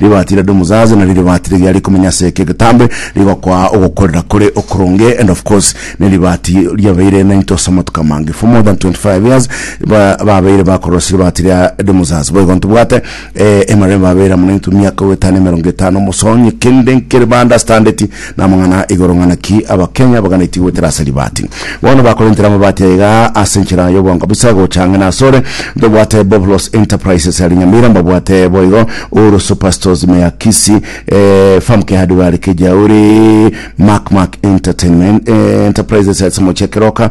Ribaati ria Dumuzaz nario ribaati riria rikomenya ase eke egetambe rigokoa ogokorera kore okoronge and of course neribaati riabeire nainto ase amatuko amange for more than 25 years ba- babeire bakorora ase ribaati ria Dumuzaz boigo ntobwate eh, emeremo babeire amo nainto miaka goetano emerongo etano mosonye kende nkere ba understandeti Namang'ana igoro ng'ana ki Abakenya baganeti goetera ase ribati. Bono bakorentera amabati aya iga ase enchera y'obonga busa gocha ang'e nasore. Tobwate Boblos Enterprises are Nyamira, mbabwate boigo Uhuru Super Stores ime ya Kisii, eh, Famke Hardware Kijauri, Mac Mac Entertainment eh, Enterprises ase Moche Keroka,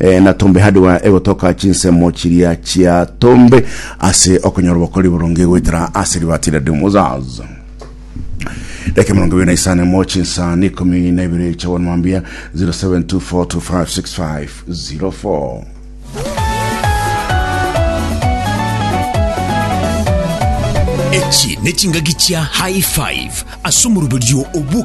Eh, na tombe hardware egotoka chinsemo chiria chia tombe ase okonyora obokori boronge goetera ase ribati ria Dumuzaz Deke mirongo ibiri na isano mo chinsani ikumi na ibiri cha one mambia 0724256504 echi ne chingaki chia high five ase omoruberio obuka